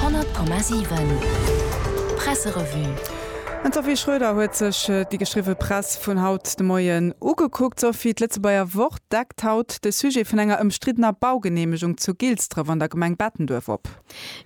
100,7 Presserevue. Den Sophie Schröder huet sech déi geschriwwe Press vun haut de Moien ugekuckt. Sophie, d'Lëtzebuerger Wort deckt haut de Sujet vun enger ëmstriddener Baugeneemegung zu Gilsdref an der Gemeng Bettenduerf op.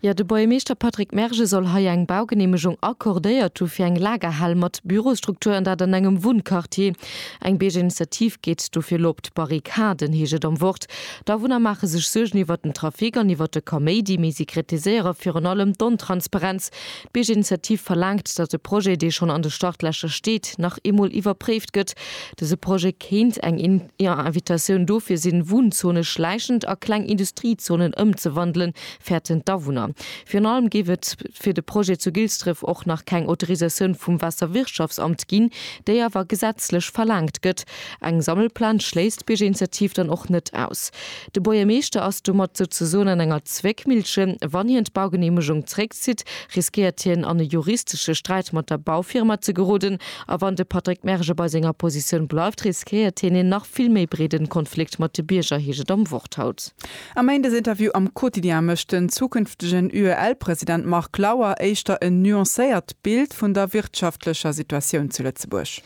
Jo, de Buergermeeschter Patrick Merge soll hei eng Baugeneemegung accordéiert hu fir eng Lagerhal mat Bürosstruktur an dat an engem Wunnquartier. Eng Biergerinitiativ geet dofir elo op d'Barrikaden, heescht et am Wort. D'Awunner maache sech Suergen iwwert den Trafic an iwwert de Kaméidi, mee si kritiséiere virun allem d'Ontransparenz. D'Biergerinitiativ verlaangt, datt e Projet, dee schonn an de Startlächer steet, nach eemol iwwerpréift gëtt. Dëse Projet kéint eng Invitatioun dofir sinn, Wunzone schläichend a kleng Industriezonen ëmzewandelen, fäerten d'Awunner. Virun allem géif et fir de Projet zu Gilsdref och nach keng Autorisatioun vum Waasserwirtschaftsamt ginn, déi awer gesetzlech verlaangt gëtt. Eng Sammelplaz schléisst d'Biergerinitiativ dann och net aus. De Buergermeeschter ass domat souzesoen an enger Zwéckmillche. Wann hien d'Baugeneemegung zréckzitt, riskéiert hien an e juristesche Sträit mat der Baufirma ze geroden. A wann de Patrick Merge bei senger Positioun bleift, riskéiert hien een nach vill méi breede Konflikt mat de Bierger, heescht et am Wort haut. Am Méindesinterview am Quotidien mécht den zukünftegen UEL-President Marc Lauer éischter en nuancéiert Bild vun der wirtschaftlecher Situatioun zu Lëtzebuerg.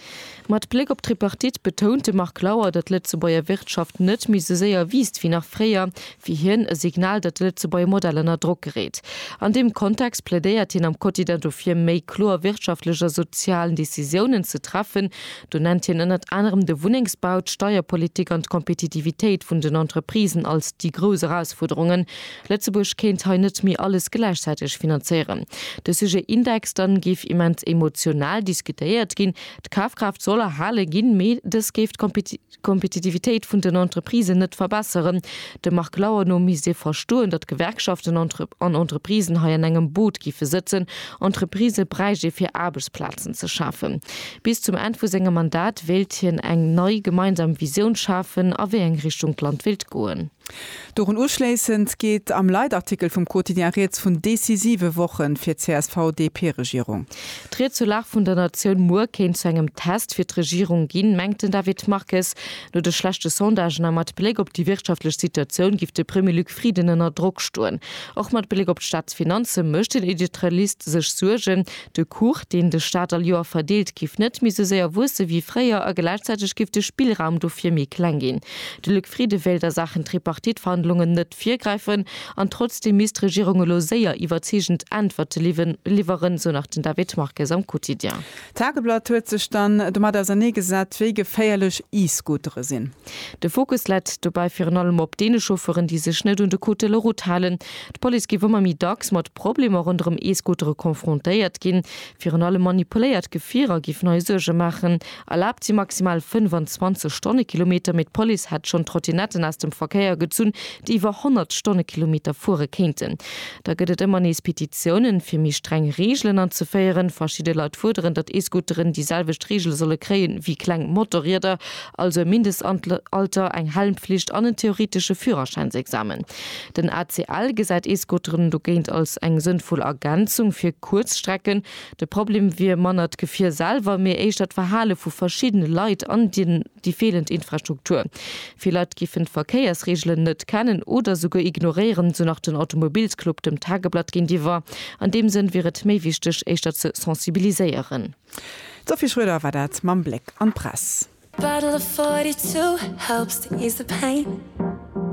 Mat Bléck op d'Tripartite betount de Marc Lauer, datt d'Lëtzebuerger Wirtschaft net méi sou séier wiisst wéi nach fréier. Fir hien e Signal, datt de Lëtzebuerger Modell ënner Drock gereet. An deem Kontext plädéiert hien am Quotidien dofir, méi kloer wirtschaftlech a sozial Decisiounen ze treffen. Do nennt hien ënnert anerem de Wunnengsbau, d'Steierpolitik an d'Kompetitivitéit vun den Entreprisen als déi grouss Erausfuerderungen. Lëtzebuerg kéint hei net méi alles gläichzäiteg finanzéieren. De Sujet Index dann géif immens emotional diskutéiert ginn. D'Kafkraaft soll erhale ginn, mee dës géif d'Kompetitivitéit vun den Entreprisen net verbesseren. Dem Marc Lauer no misst ee verstoen, datt Gewerkschaften an Entreprisen hei an engem Boot géife sëtzen. Entreprisë bräicht ee fir Aarbechtsplazen ze schafen. Bis zum Enn vu sengem Mandat wéilt hien eng nei gemeinsam Visioun schafen, a wéi eng Richtung d'Land wéilt goen. Dorun uschléissend geet am Leitartikel vum Quotidien rieds vun decisive Woche fir d'CSV-DP-Regierung. D'Ried zur Lag vun der Natioun muer kéint zu engem Test fir d'Regierung ginn, mengt den David Marques. No de schlechte Sondagen a mat Bléck op déi wirtschaftlech Situatioun giff de Premier Luc Frieden ënner Drock stoen. Och mat Bléck op d'Staatsfinanze mécht den Editorialist sech Suergen. De Kuch, deen de Staat all Joer verdeelt, giff net méi sou séier wuesse wéi fréier, a gläichzäiteg giff de Spillraum dofir méi kleng ginn. De Luc Frieden wéilt a Saachen Tripartite-Verhandlungen net virgräifen, an trotzdeem misst d'Regierung elo séier iwwerzeegend Äntwerte liwweren, sou nach den David Marques am Quotidien. D'Tageblatt huet sech dann domat ausernee gesat, wéi geféierlech E-Scootere sinn. De Fokus läit dobäi virun allem op deene Chauffeuren, déi sech net un de Code de la Route halen. D'Police giff ëmmer méi dacks mat. Problemer ronderëm E-Scootere confrontéiert ginn. Virun allem manipuléiert Gefierer géifen hei Suerge maachen. Erlaabt si maximal 25 Stonnekilometer, mee d'Police hätt schonn Trottinetten aus dem Verkéier gezunn, déi iwwer 100 Stonnekilometer fuere kéinten. Da gëtt et ëmmer nees Petitiounen, fir méi streng Reegelen anzeféieren. Verschidde Leit fuerderen, datt E-Scooteren déi selwecht Reegele solle kréien, wéi kleng Motorrieder, also e Mindestalter, eng Helmpflicht an en theoretesche Führerschäinsexamen. Den ACL gesäit ee Scooteren dogéint als eng sënnvoll Ergänzung fir kuerz Strecken. De Problem wier manner d'Gefier selwer, mee éischter d'Verhale vu verschiddene Leit an déi feelend Infrastruktur. Vill Leit géifen d'Verkéiersreegelen net kennen oder souguer ignoréieren, esou nach den Automobilsclub dem Tageblatt géintiwwer. An deem Sënn wier et méi wichteg, éischter ze sensibiliséieren. D'Sophie Schröder war dat mam Bléck an d'Press.